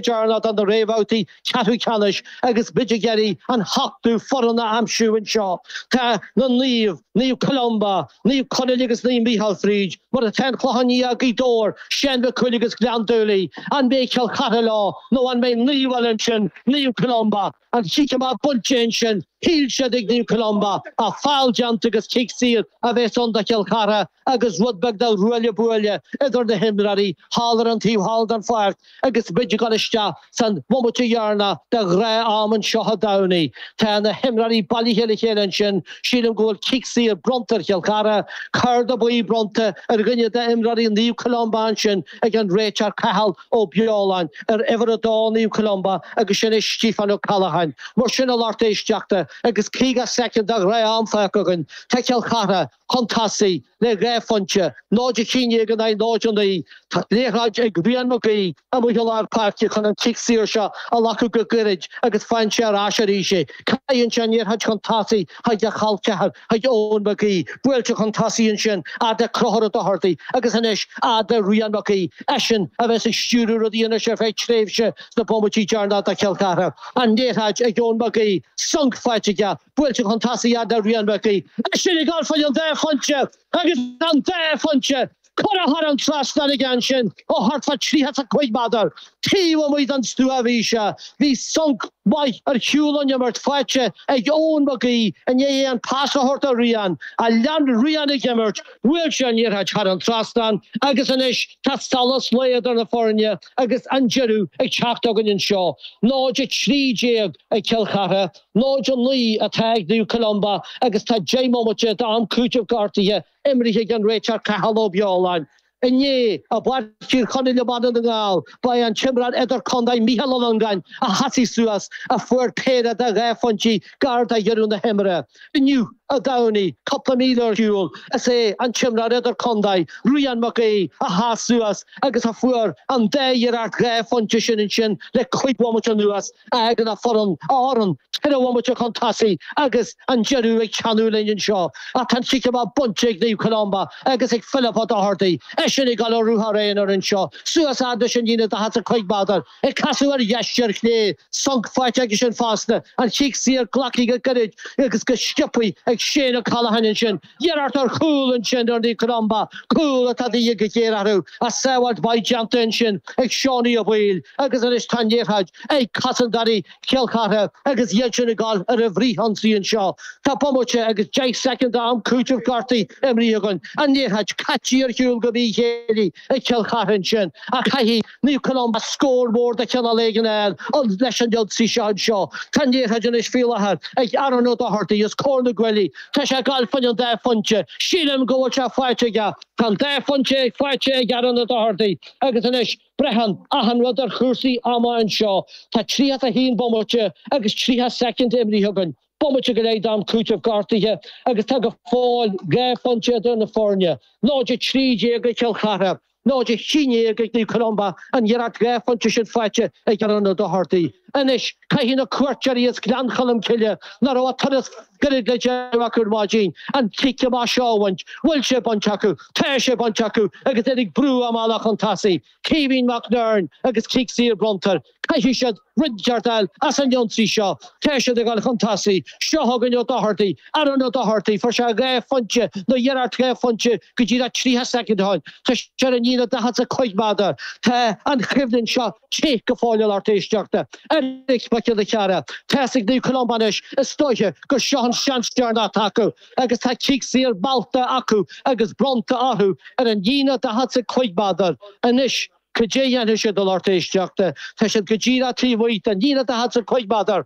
deireanach de na réamhbhabhtaí ceathrú ceannais agus muid ag iarraidh an t-ochtú foireann a aimsiú anseo. Tá na Naomh, Naomh Columba, Naomh Conaill agus Naomh Micheál fríd, mar atá an Clochán Liath, Gaoth Dobhair, Seán Mac Cumhaill agus Gleann tSúilí. An mbeidh Cill Chartha leo nó an mbeidh naomh eile ansin, Naomh Columba, An cic amach bainte ansin, shíl siad ag Naomh Columba ach feall déanta agus cic saor a bhéas ann do Chill Chartha agus rud beag de ruaille buaille idir na himreoirí thall ar an taobh thall den pháirc agus muid ag dul isteach san bhomaite dheireanach de ghnáth-am anseo i dTamhnaigh. Tá na himreoirí bailithe le chéile ansin, sílim go bhfuil cic saor bronnta ar Chill Chartha, cárta buí bronnta ar dhuine de imreoirí Naomh Columba ansin, ag an réiteoir Cathal Ó Beoláin ar uimhir a dó Naomh Columba agus sin é Stiofán Ó Ceallacháin mar sin a lucht éisteachta agus 50 soicind de ghnáth-am fágtha againn tá Cill Chartha chun tosaigh le dhá phointe, 0-11 in aghaidh 0-9, tá liathróid ag Rian Mac Aoidh amuigh i lár páirce chun an cic saor seo a ghlacadh go gairid agus faigheann sé ar ais arís é caitheann sé an liathróid chun tosaigh chuig a chol ceathar, chuig Eoin Mac Aoidh, buailte chun tosaigh ansin, fhad le Conchúr Ó Dochartaigh, agus anois, fhad le Rian Mac Aoidh, eisean a bheas ag stiúradh rudaí anois ar feadh tréimhse sna bomaití deireanacha do Chill Chartha. An liathróid ag Eoin Mac Aoidh, sonc faighte aige, buailte chun tosaigh, fhad le Rian Mac Aoidh, eisean ag dul fá dhéin an dá phointe agus an dá phointe Curtha thar an trasnán aige ansin ó thart fá tríocha 's a cúig méadar taobh amuigh don stua bhí sé. Bhí sonc maith ar shiúl ón imirt faighte ag Eoin Mac Aoidh i ndiaidh é an pas a thabhairt do Rian, ach lean Rian ag imirt, bhuail sé an liathróid thar an trasnán agus anois tá solas lae idir na foirne agus an deireadh ag teacht againn anseo. 0, 13 ag Cill Chartha, 0, 9 atá ag Naomh Columba agus tá deich mbomaite d'am cúitimh gortaithe Imrithe ag an réiteoir Cathal Ó Beoláin. Inné, i bPáirc Thír Chonaill i mbaile Dhún na nGall, ba é an t-imreoir idirchontae Micheál Ó Longáin a sheasaigh suas, a fuair péire de dhá phointí gar do dheireadh na himeartha. Inniu, i dTamhnaigh, cúpla míle ar shiúl, is é an t-imreoir idirchontae Rian Mac Aoidh a sheas suas agus a fuair an dá iarracht dhá phointe sin ansin le cúig bhomaite anuas. Tagann a fhoireann, a fhoireann, ceithre bhomaite chun tosaigh agus an deireadh ag teannadh linn anseo ach tá an cic amach bainte ag Naomh Columba agus ag Philip Ó Dochartaigh, eisean ag dul ar ruathar aonair anseo suas fhad leis an líne 45 méadar, ag casadh ar dheis, ar chlé, sonc faighte aigesean fosta, an cic saor glactha go gairid agus go sciopthaí ag Shane O'Callaghan ansin. Iarracht ar chúl ansin ar Naomh Columba, cúl atá de dhíth go géar orthu ach sábháilt mhaith déanta ansin ag Seánie Ó Baoill agus anois tá an liathróid ag cosantóirí Chill Chartha agus iadsan ag dul ar an bhfrith-ionsaí anseo. Tá bomaite agus deich soicind d'am cúitimh gortaithe imrithe againn. An liathróid caite ar shiúl go míchéillí ag Cill Chartha ansin ach caithfidh Naomh Columba scór mór de chineál éigin air an leis an ionsaí seo anseo. Tá an liathróid anois faoi láthair ag Aaron O'Doherty os comhair na gcuaillí. Tá sé ag goil fá choinne an dá phointe. Sílim go bhfuil sé faighte aige. Tá an dá phointe faighte ag Aaron O'Doherty agus anois braitheann achan rud ar chúrsaí ama anseo. Tá 31 bomaite agus 30 soicind imrithe againn, bomaite go leith d'am cúitimh gortaithe agus tá go fóill dhá phointe idir na foirne, 0-13 ag Cill Chartha. náid a haon déag ag Naomh Columba, an iarracht dhá phointe sin faighte ag Aaron O'Doherty. Anois, caithfidh na cuairteoirí as Gleann Cholm Cille, nach raibh ach turas gairid le déanamh acu ar maidin, an cic amach seo a bhaint. Bhfuil sé bainte acu? Tá sé bainte acu agus iad ag brú a mbealach chun tosaigh. Caoimhín McNern agus cic saor bronnta air. Caithfidh siad rud inteacht a fháil as an ionsaí seo. Tá siad ag goil chun tosaigh. Seo chugainn O'Doherty, Aaron O'Doherty, fuair sé dhá phointe nó iarracht dhá phointe go díreach tríocha soicind ó shin. Tá sé ar an líne daichead 's a cúig méadar. Tá an choimhlint seo te go fóill a lucht éisteachta. Eric Mac Giolla Chearra. Tá's ag Naomh Columba anois is dóiche gur seo an seans deireanach atá acu agus tá cic saor meallta acu agus bronnta orthu ar an líne daichead 's a cúig méadar. Anois. Cad é a dhéanfaidh siad a lucht éisteachta? Tá siad go díreach taobh amuigh den líne daichead 's a cúig méadar.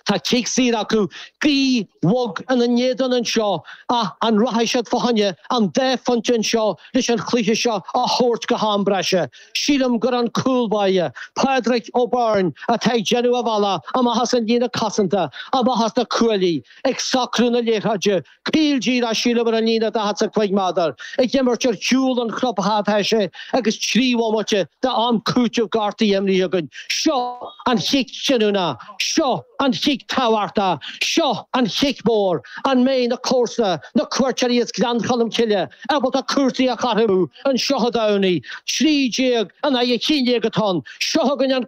Tá cic saor acu, gaoth bhog ina n-éadan anseo ach an rachaidh siad fá choinne an dá phointe anseo leis an chluiche seo a thabhairt go ham breise? Sílim gur an cúl báire, Pádraic Ó Beirn, atá ag déanamh a bhealach amach as an líne cosanta, amach as na cuaillí, ag socrú na liathróide. CLG dá síleamar an líne daichead 's a cúig méadar ag imirt ar chúl an chlub theipthe agus trí bhomaite d'am cúiteamh gortaithe imrithe againn. Seo an chic cinniúna! Seo an chic tábhachtach! Seo an chic mór! An mbeidh na comharsana, na cuairteoirí as Gleann Cholm Cille, ábalta cúrsaí a chothromú anseo sa Tamhnaigh? Trí déag in aghaidh a haon déag atá ann. Seo chugainn an.